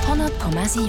100,7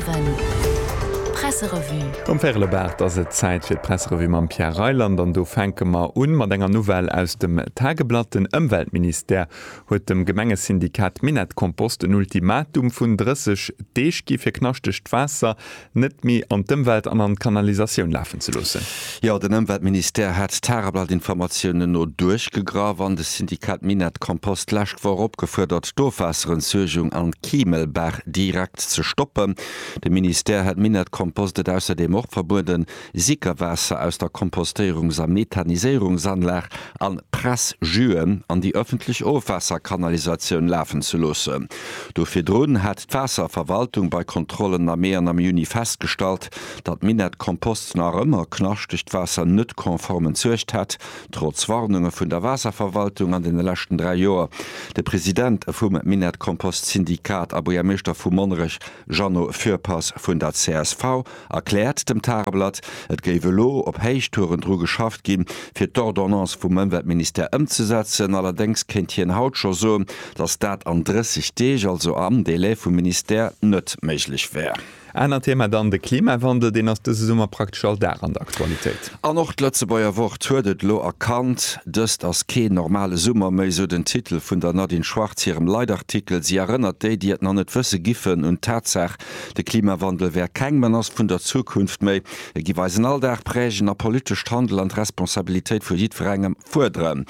Presserevue. Um Ferlebart ass et Zäit fir d'Presserevue mam Pierre Reyland an do fänke mer un mat enger Nouvelle aus dem Tageblatt. Den Ëmweltministère huet dem Gemengesyndikat Minett-Kompost en Ultimatum vun 30 Deeg gi fir knaschtegt Waasser net méi an d'Ëmwelt an an d'Kanalisatioun lafen ze loossen. Jo, den Ëmweltministère hat d'Tageblatt-Informatiounen no duerchgegraff an de Syndikat Minett Kompost d'lescht Woch opgefuerdert, d'Ofwaasserentsuergung an d'Kimelbaach direkt ze stoppen. De Ministère hat Minett Kompost et ausserdeem och verbueden, Sickerwaasser aus der Kompostéierungs a Methaniséierungsanlag an Pressjuen an déi ëffentlech Ofwaasserkanalisatioun lafen ze loossen. Do virdrun hat d'Waasserverwaltung bei Kontrollen am Mee an am Juni festgestallt, datt Minett Kompost nach ëmmer knaschtegt Waasser net konform entsuergt hätt, trotz Warnunge vun der Waasserverwaltung an deene leschten 3 Joer. De President vum Minett Kompost Syndikat a Buergermeeschter vu Monnerech Jeannot Fürpass vun der csv. erkläert dem Tageblatt. Et géif elo op Héichtouren dru geschafft gi fir d'Ordonnance vum Ëmweltministère ëmzesetzen. Allerdéngs kéint hien haut scho soen, datt dat an 30 Deeg, also am Delai vum Ministère, net méiglech wär. Anert Thema dann de Klimawandel, deen ass dëse Summer praktesch all Dag an der Aktualitéit. An och d'Lëtzebuerger Wort huet et elo erkannt, Dëst ass keen normale Summer méi, sou den Titel vun der Nadine Schwarz hirem Leitartikel. Si erënnert déi, déi et nach net wësse giffen, un d'Tatsaach, De Klimawandel wär keng Menace vun der Zukunft méi, e giff eisen Alldag prägen a politescht Handel an d'Responsabilitéit vu jiddwerengem fuerderen.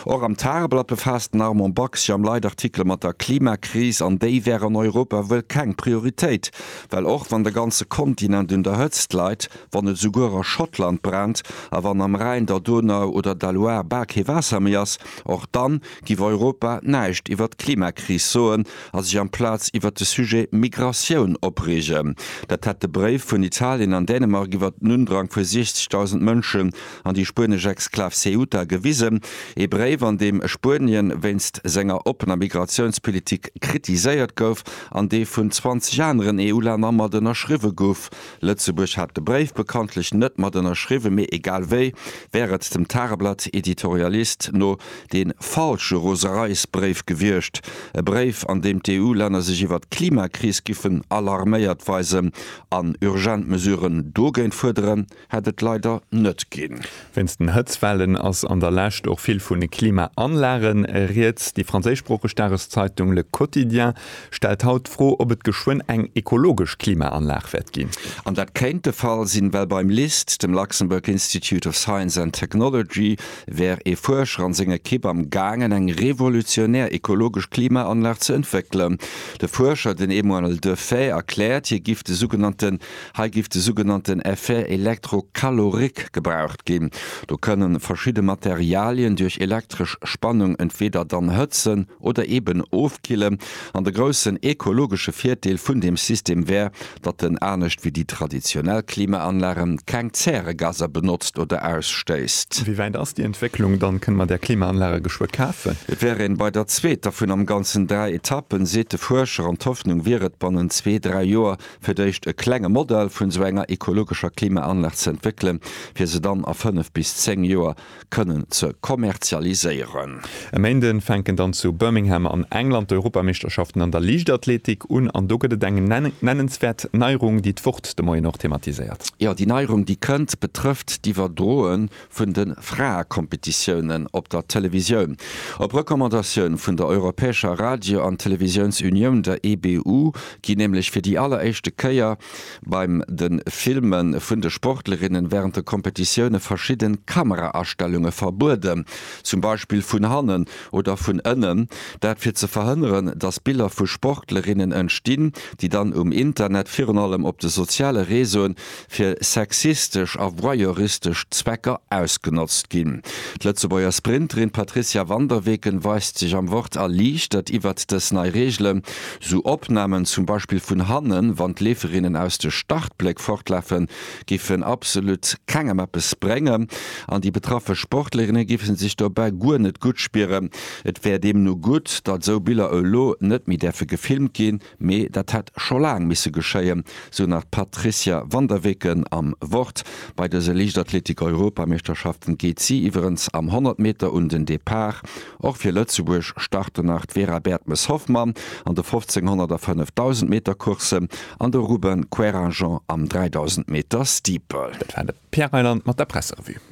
Och am Tageblatt befaasst den Armand Bax sech am Leitartikel mat der Klimakris an déi wär an Europa wuel keng Prioritéit, well och wann de ganze Kontinent un der Hëtzt leit, wann et esouguer a Schottland brennt a wann am Rhäin, der Donau oder der Loire bal kee Waasser méi ass, och dann giff Europa näischt iwwert d'Klimakris soen. a sech amplaz iwwert de Sujet Migratioun opreegen. Dat hätt de Bréif vun Italien an Dänemark iwwert den Undrang vu 60.000 Mënschen an déi spuenesch Exklav Ceuta gewisen, ee Bréif, an deem Spuenien wéinst senger oppener Migratiounspolitik kritiséiert gouf an dee vun 20 aneren EU-Länner mat ënnerschriwwe gouf. Lëtzebuerg hat de Bréif bekanntlech net mat ënnerschriwwen, mee egal wéi wär et dem Tageblatt Editorialist no de falsche Rosereisbréif gewiescht, e Bréif an deem d'EU-Länner sech iwwert d'Klimakris giffen alarméiert weisen an urgent Mesuren dogéint fuerderen, hätt et leider net ginn. Wéinst den Hëtzwellen ass an der Lescht och vill vun de Klimaanlage rieds. Déi franséischsproocheg Dageszeitung Le Quotidien stellt haut d'Fro, ob et geschwënn eng ekologesch Klimaanlag wäert ginn. An dat kéint de Fall sinn, well beim LIST, dem Luxembourg Institute of Science and Technology, wär ee Fuerscher an seng Ekipp am gaangen, eng revolutionär ekologesch Klimaanlag ze entwéckelen. De Fuerscher, den Emmanuel Defay, erkläert, hie giff de sougenannte Hei giff de sougenannten Effet électrocalorique gebraucht ginn. Do kënne verschidde Materialien duerch elektresch Spannung entweeder dann hëtzen oder eben ofkillen. An de groussen ekologesche Virdeel vun deem System wär, datt en anescht wéi déi traditionell Klimaanlagen keng Zäregaser benotzt oder ausstéisst. Wéi wäit ass déi Entwécklung dann? Kënne mer där Klimaanlage geschwë kafen? Et wär een bei der zweeter vun am Ganzen dräi Etappen, seet de Fuerscher, an d'Hoffnung wier et, bannent zwee, dräi Joer fir d'éischt e klenge Modell vun esou enger ekologescher Klimaanlag ze entwéckelen, fir se dann a fënnef bis zéng Joer kënnen ze kommerzialiséieren. E Méinden fänken dann zu Birmingham an England d'Europameeschterschaften an der Liichtathletik un an do gëtt et eng nennenswäert Neierung, déi d'Wort de Moien och thematiséiert. Jo, déi Neierung, déi kënnt, betrëfft d'Iwwerdroe vun de Fraekompetitiounen op der Televisioun. Op Recommandatioun vun der europäescher Radio an Televisiounsunioun, der EBU, ginn nämlech fir déi alleréischte Kéier beim de Filme vun de Sportlerinnen wärend de Kompetitioune verschidde Kameraastellunge verbueden, zum Beispill vun hannen oder vun ënnen, dat fir ze verhënneren, datt Biller vu Sportlerinnen entstinn, déi dann um Internet, virun allem op de soziale Reseauen, fir sexistesch a voyeuristesch Zwecker ausgenotzt ginn. D'Lëtzebuerger Sprinterin Patricia Van der Weken weist sech am Wort erliichtert iwwert dës nei Reegelen. Sou Opnamen, zum Beispill vun hannen, wann d'Leeferinnen aus de Startbléck fortlafen, géifen absolut kengem eppes bréngen an déi betraffe Sportlerinne géife sech dobäi guer net gutt spieren. Et wär deemno gutt, datt sou Biller elo net méi däerfe gefilmt ginn. Mee dat hätt scho laang misse geschéien, sou nach d'Patricia Van der Weken am Wort. Bei dëse Liichtathletik-Europameeschterschaften geet si iwwerens am 100 Meter un den Depart. Och fir Lëtzebuerg starten nach d'Vera Bertmes-Hoffmann an de 1500 a 5000 Meter Coursse an de Ruben Querinjean am 3000 Meter Steeple. Dat war de Pierre Reyland mat der Presserevue.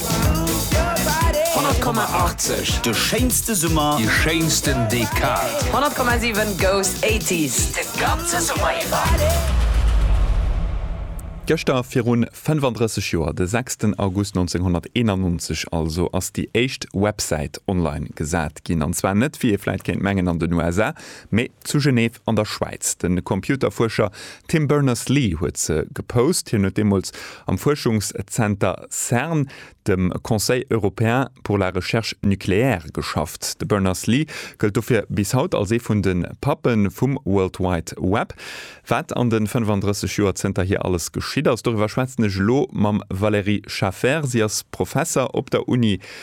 100,80 De schéinste Summer, déi schéinsten Dekad. 100,7 Goes 80s de ganze Summer iwwer. Gëschter virun 35 Joer, de 6 den August 1991 also, ass déi éischt Websäit online gesat ginn. An zwar net, wéi ee vläit kéint mengen, an den USA, Mee zu Genève an der Schwäiz. De Computerfuerscher Tim Berners-Lee huet se gepost. Hien huet deemools am Fuerschungszenter Cern, dem Conseil européen pour la recherche nucléaire, geschafft. De Berners-Lee gëllt dofir bis haut als ee vun de Pappe vum World Wide Web. Wat an de 35 Joer zënterhier alles geschitt ass, doriwwer schwätzen ech elo mam Valérie Schafer. Si ass Professer op der Uni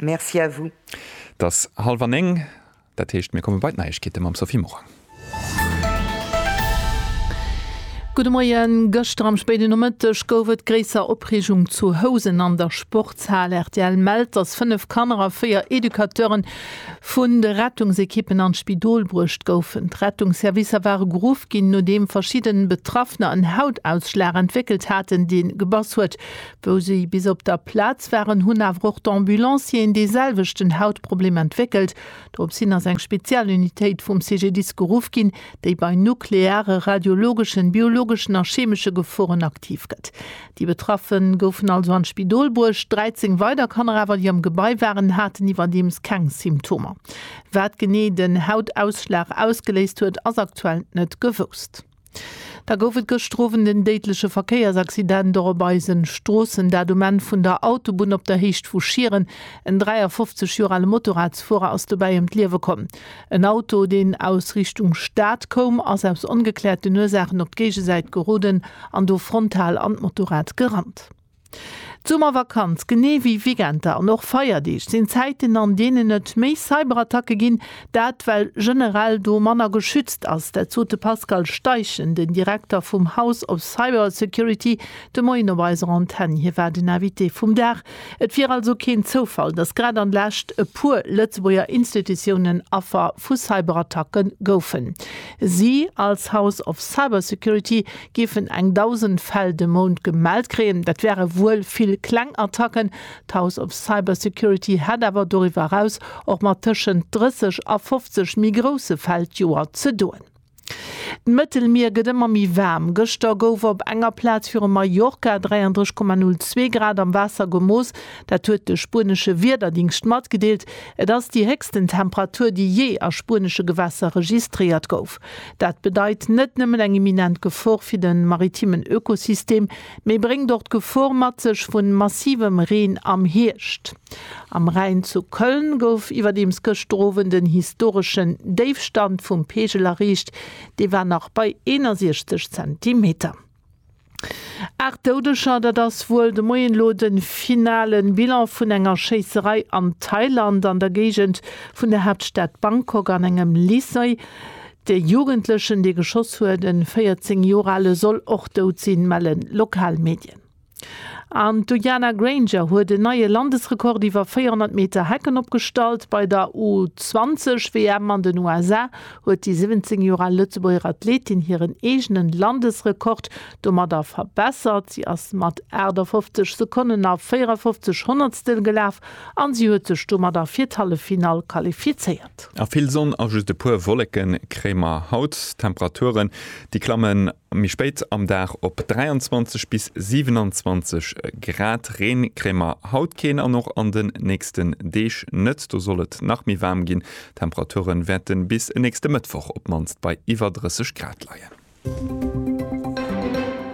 Merci à vous. Et ass hallef an néng, dat heescht, mir komme bei d'Neiegkeete mam Sophie Morang. Gudde Moien. Gëschter am spéiden Nomëtteg gouf et gréisser Opreegung zu Housen an der Sportshal. Rtl mellt, datt 5 Kanner a 4 Educateure vun de Rettungsekippen an d'Spidol bruecht goufen. D'Rettungsservicer ware geruff ginn, nodeem verschidde Betraffener en Hautausschlag entwéckelt haten, dee gebass huet. Wou si bis op der Plaz waren, hunn awer och d'Ambulancieren dee selwechten Hautproblem entwéckelt. Dorops hin ass eng Spezialunitéit vum CGDIS geruff ginn, déi bei nukleare, radiologeschen, biologeschen a chemesche Geforen aktiv gëtt. Déi Betraffe goufen also an d'Spidol bruecht. 13 weider Kanner awer, déi am Gebai waren, haten iwwerdeems keng Symptomer. Wat genee den Hautausschlag ausgeléist huet, ass aktuell net gewousst. Da gouf et gëschter Owend en déidleche Verkéiersaccident och op eise Stroossen, dat um Enn vun der Autobunn op der Héicht vu Schieren. En 53 Joer ale Motorradsfuerer ass dobäi ëm d'Liewe komm. En Auto, deen aus Richtung Stad koum, ass aus ongekläerten Ursaachen op d'Géigesäit geroden an do frontal an d'Motorrad gerannt. D'Summervakanz, genee wéi Weekender an och Feierdeeg, sinn Zäiten, an deenen et méi Cyberattacke ginn. Dat well generell do manner geschützt ass. Dat sot de Pascal Steichen, den Direkter vum House of Cybersecurity, de Moien op eiser Antenn. Hie war den Invité vum Dag. Et wier also keen Zoufall, datt grad an Lescht e puer Lëtzebuerger Institutiounen Affer vu Cyberattacke goufen. Si als House of Cybersecurity géifen eng Dausend Fäll de Mount gemellt kréien. Dat wäre wuel vill kleng Attacken. D'House of Cybersecurity hätt awer doriwwer eraus och mat tëschent 30 a 50 méi grousse Fäll d'Joer ze doen. D'Mëttelmier gëtt ëmmer méi waarm. Gëschter gouf op enger Plaz viru Mallorca 33,02 Grad am Waasser gemooss. Dat huet de spuenesche Wiederdingscht matgedeelt. Et ass déi héchsten Temperatur, déi jee a spuenesche Gewässer registréiert gouf. Dat bedeit net nëmmen eng imminent Gefor fir de maritimen Ökosystem, mee bréngt och d'Gefor mat sech vu massivem Reen am Hierscht. Am Rhäin zu Köln gouf iwwerdeems gëschter Owend en historeschen Déifstand vum Peegel erreecht, dee war nach bei 61 Zentimeter. Aacht Doudeger, dat ass wuel de Moien elo de finale Bilan vun enger Schéisserei an Thailand an der Géigend vun der Haaptstad Bangkok an engem Lycée. De Jugendlechen, dee geschoss huet, e 14 Joer ale, soll och dout sinn, mellen lokal Medien. An d'Uiana Grainger huet en neie Landesrekord iwwer 400 Meter Hecken opgestallt. Bei der U-20-WM an den USA huet déi 17 Joer al Lëtzebuerger Athletin hiren eegenen Landesrekord domadder verbessert. Si ass mat 58 Sekonnen a 54 Honnertstel gelaf an si huet sech domadder fir d'Halleffinall qualifizéiert. A vill Sonn a just e puer Wolleke kréie mer haut. Temperaturen, déi klammen Méi spéit am Dag op 23 bis 27 Grad. Reen kréie mer haut keen an och an den nächsten Deeg net. Do soll et nach méi waarm ginn. D'Temperature wäerte bis e nächste Mëttwoch op d'mannst bei iwwer 30 Grad leien.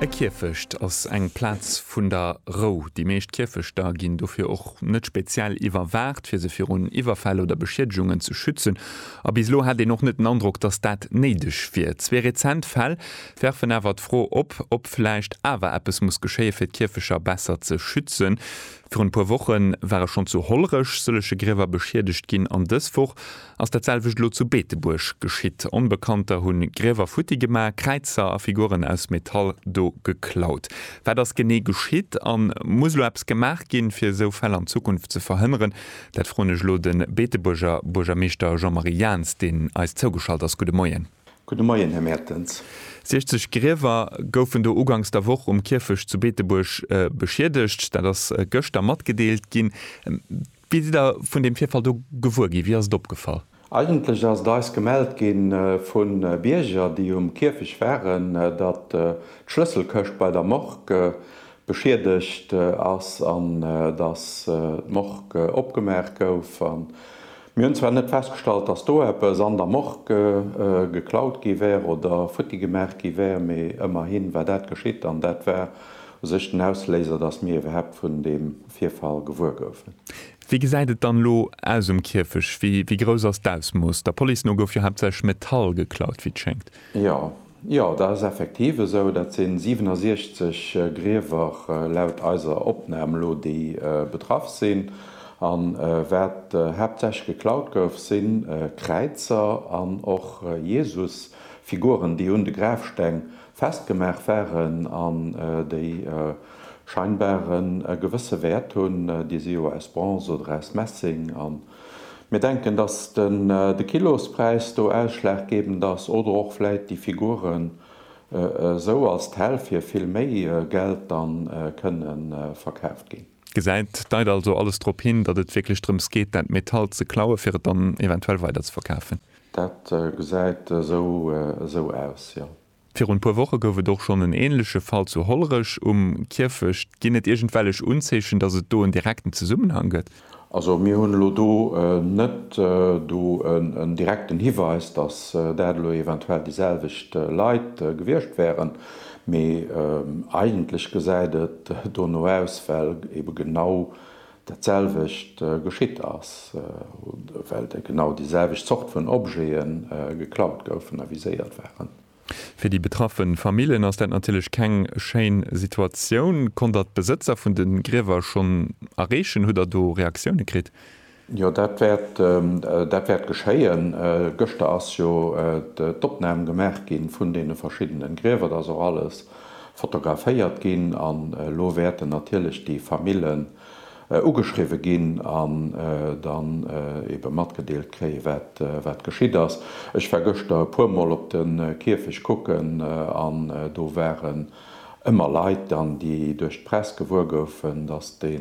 E Kierfecht ass eng Plaz vun der Rou. Déi meescht Kierfechter ginn dofir och net speziell iwwerwaacht, fir se virun Iwwerfäll oder Beschiedegungen ze schützen. A bis elo hätt een och net den Androck, datt dat néideg wier. Zwee rezent Fäll werfen awer d'Fro op, ob vläicht awer eppes muss geschéien, fir d'Kierfecher besser ze schützen. Virun e puer Woche ware schonn zu Hollerech sëllege Griewer beschiedegt ginn an dës Woch ass dat selwecht elo zu Beetebuerg geschitt. Onbekannter hu Griewer futti gemaach, Kräizer a Figuren aus Metall do geklaut. Wat ass genee geschitt? A muss elo eppes gemaach ginn, fir esou Fäll an Zukunft ze verhënneren? Dat froen ech elo de Beetebuerger Buergermeeschter Jean-Marie Jaentz, deen eis zougeschalt ass. Gudde Moien. Gudde Moien, Här Mertens. 60 Griewer goufen do uganks der Woch um Kierfecht zu Beetebuerg beschiedegt. Dat ass gëschter matgedeelt ginn. Wéi sidd Der vun deem Virfall do gewuer ginn? Wéi ass et opgefall? Eigentlech ass et eis gemellt gi vu Bierger, déi um Kierfecht waren, datt d'Schlësselkëscht bei der Morgue beschiedegt ass an datt d'Morgue opgemaach gouf. Mir hunn zwar net festgestallt, datt do eppes an der Morgue geklaut gi wär oder futti gemaach gi wär, mee ëmmerhi war dat geschitt an dat war u sech den Ausléiser, datt mir iwwerhaapt vun deem Virfall gewuer goufen. Wéi gesäit et dann elo aus um Kierfech? Wéi grouss ass d'Ausmooss? Der Police no gouf jo haaptsächlech Metall geklaut, wéi et schéngt. Jo, jo, dat ass effektiv esou. Dat si 67 Griewer laut eiser Opnam elo, déi betraff sinn. A wat haaptsächlech geklaut gouf, si Kräizer an och Jesusfiguren, déi un de Grafsteng festgemaach waren an déi scheinbar en gewësse Wäert hunn, déi si jo aus Bronze oder aus Messing an mir denken, dass de Kilospräis do ausschlaggebend ass oder och vläit déi Figuren esou als Tel fir vill méi Geld dann kënnen verkaaft ginn. Gesäit, deit also alles drop hin, datt et wierklech drëms geet, dat Metall ze klauen, fir et dann eventuell weiderzeverkafen? Dat gesäit esou aus, jo. Virun e puer Woche gouf et och schonn en änleche Fall zu Hollerech um Kierfecht. Ginn et iergendwellech Unzeechen, datt et do en direkten Zesummenhang gëtt? Also mir hunn elo do net do en direkten Hiweis, datt dat elo eventuell déi selwecht Leit gewiescht wären. Mee eigentlech gesäit et dono aus, well ebe genau dat selwecht geschitt ass, well genau déi selwecht Zort vun Objete geklaut goufen a viséiert waren. Fir déi betraffe Famillen ass dat natierlech keng schéin Situatioun. Konnt Der d'Besëtzer vun de Griewer schonn erreechen? Hutt Der do Reaktioune kritt? Jo, dat wäert geschéien. Gëschter ass jo d'Opnam gemaach gi vun deene verschiddene Griewer. Et ass och alles fotograféiert ginn. An elo wäerten natierlech déi Famillen ugeschriwwe ginn an dann ebe matgedeelt kréien, wat geschitt ass. Ech war gëschter e puermol op de Kierfecht kucken an do waren ëmmer Leit dann, déi duerch d'Press gewuer goufen, datt dee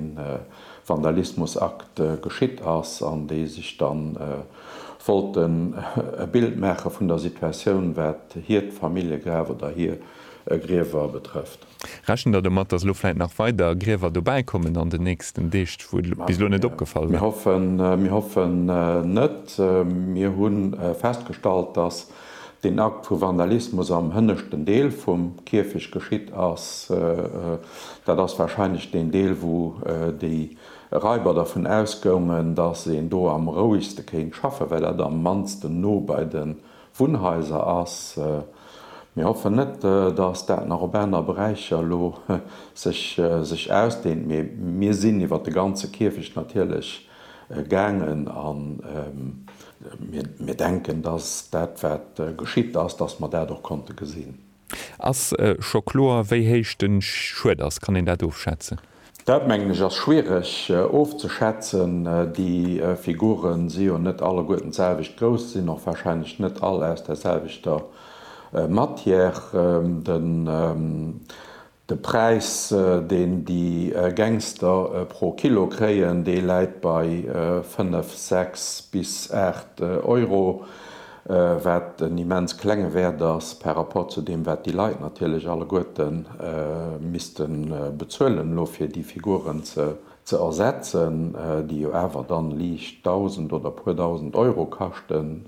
Vandalismusakt geschitt ass an déi sech da wollten e Bild maache vun der Situatioun, wat hiert Familljegraf oder hir Griewer betrëfft. Rechent Der domat, datt elo vläit nach weider Griewer dobäi kommen an den nächsten Deeg, wou et bis elo net opgefall war? Mir hoffen net. Mir hu festgestallt, datt Den Akt vu Vandalismus am hënneschten Deel vum Kierfech geschitt ass. Dat ass warscheinlech deen Deel, wou déi Raiber dervun ausgoungen, datt een do am rouegste kéint schaffen, well dat am mannsten no bei de Wunnhaiser ass. Mir hoffen net, datt dat nach op aner Beräicher elo sech ausdeent, mee mir sinn iwwer de ganze Kierfecht natierlech gaangen a mir denken, dass dat wat geschitt ass, dass mer dat och konnte gesinn. Ass scho kloer wéi héich de Schued ass? Kann een dat ofschätzen? Dat mengen ech ass schwiereg ofzeschätzen. Déi Figure si jo net alleguerten d'selwecht grouss, sinn och wahrscheinlech net all aus der selwechter Matière. De Präis, deen déi Gangster pro Kilo kréien, dee läit bei 5, 6 bis 8 Euro, wat en immens klenge Wäert ass par rapport zu deem, wat déi Leit natierlech alleguerte misste bezuelen elo, fir déi Figuren ze ersetzen, déi jo awer dann liicht Dausend oder e puer Dausend Euro kaschten.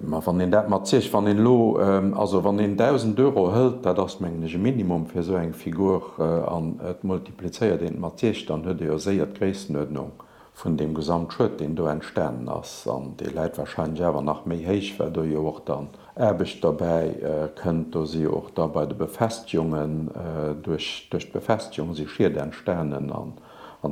Mä wann een dat mat Zich, wann een elo, also wann een 1.000 Euro hëlt, dat ass mengen ech e Minimum fir esou eng Figur, an et multiplizéiert een et mat Zich, dann huet ee jo séier d'Gréissenuerdnung vun deem Gesamtschued, deen do entstanen ass. An dee läit warscheinlech awer nach méi héich, well do jo och dann Aarbecht derbäi kënnt. Do si jo och da bei de Befestegungen, duerch d'Befestegung si Schied entstanen an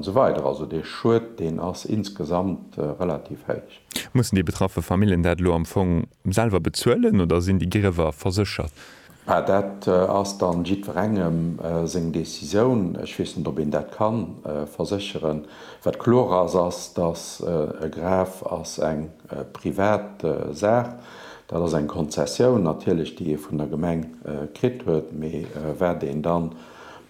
esou weider. Also dee Schued, deen ass insgesamt relativ héich. Mussen déi betraffe Famillen dat elo am Fong selwer bezuelen oder sinn déi Griewer verséchert? Mä dat ass da jiddwerengem seng Decisioun. Ech weess net, ob een dat ka versécheren. Wat kloer ass, ass, datt e Graf ass eng privat Saach. Dat ass eng Konzessioun natierlech, déi ee vun der Gemeng kritt huet. Mee wat een dann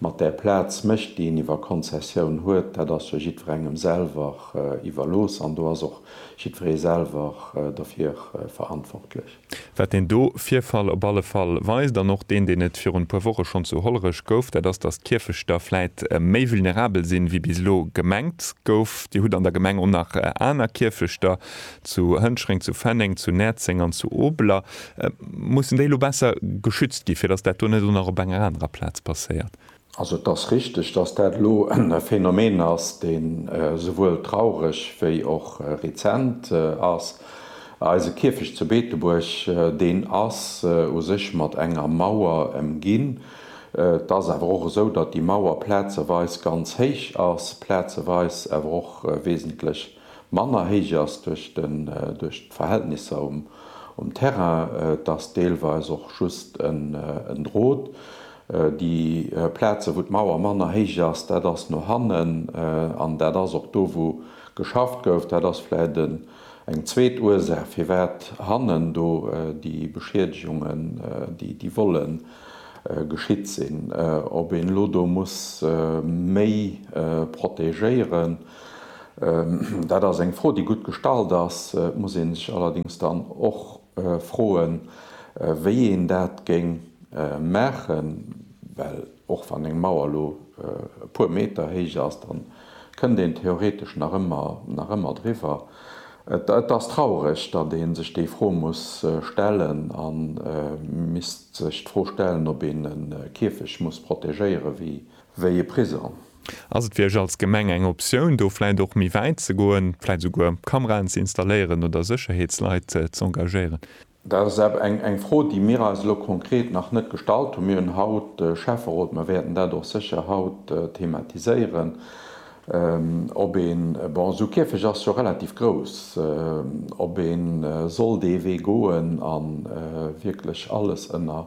Mat där Plaz mécht, déi een iwwer Konzessioun huet, dat ass jo jiddwerengem selwer iwwerlooss an do ass och jiddweree selwer dofir verantwortlech. Wat deen do Virfall op alle Fall weist, an och deen, deen et virun e puer Woche schonn zu Hollerech gouf, dat ass, datt d'Kierfechter vläit méi vulnerabel sinn, wéi bis elo gemengt gouf. Dir hutt an der Gemeng och nach aner Kierfechter, zu Hënschreng, zu Fenneng, zu Näerzeng an zu Obeler, mussen déi elo besser geschützt ginn, fir datt dat do net och nach op enger anerer Plaz passéiert? Also et ass richteg, datt dat elo e Phänomen ass, dee souwuel traureg wéi och rezent ass. Eise Kierfecht zu Beetebuerg, deen ass u sech mat enger Mauer ëmginn. Et ass awer och esou, datt déi Mauer plazeweis ganz héich ass, plazeweis awer och wesentlech manner héich ass duerch den duerch d'Verhältnisser um um Terrain, et ass deelweis och just en en Drot. Déi Plazen, wou d'Mauer manner héich ass, dat ass no hannen an dat ass och do, wou geschafft gouf. Dat ass vläicht en eng zweet Ursaach, firwat hannen do déi Beschiedegungen, déi déi Vollë geschitt sinn. Ob een elo do muss méi protegéieren? Dat ass eng Fro, déi gutt gestallt ass. Et muss ee sech allerdéngs dann och froen, wéi een dat géing maachen, well och wann eng Mauer elo e puer Meter héich ass, da kënnt een theoretesch nach ëmmer driwwer. Et ass traureg, datt ee sech déi Fro muss stellen a misst sech d'Fro stellen, ob een e Käfeg muss protegéieren, wéi e Prisong. Ass et fir Iech als Gemeng eng Optioun, do vläit och méi wäit ze goen, vläit esouguer Kameraen ze installéieren oder Sécherheetsleit z'engagéieren? Dat ass awer eng Fro, déi mir eis elo konkret nach net gestallt hunn. Mir hunn haut de Schäfferot, mir wäerten dat och sécher haut thematiséieren, ob een, bon, esou Kierfech ass jo relativ grouss, ob ee soll dee Wee goen a wierklech alles ënner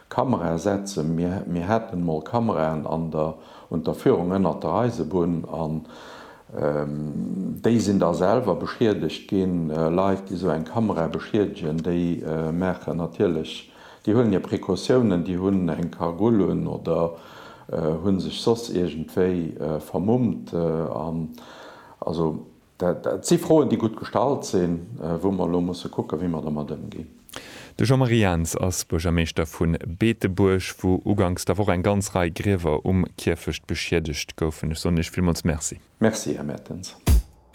Kamera setzen. Mir hätten emol Kameraen an der Un der Führung ënnert der Eisebunn, an déi sinn da selwer beschiedegt ginn. Leit, déi esou eng Kamera beschiedegen, déi maachen natierlech, déi huelen hir Precautiounen, déi hunn eng Cagoule un oder hu sech soss iergendwéi vermummt. Also. Dat si Froen, déi gutt gestallt sinn, wou mer elo musse kucken, wéi mer domat ëmginn. De Jean-Marie Jans ass Buergermeeschter vu Beetebuerg, wou uganks der Woch eng ganz Rei Griewer um Kierfecht beschiedegt goufen. Ech soen Iech villmools Merci. Merci, Här Mertens.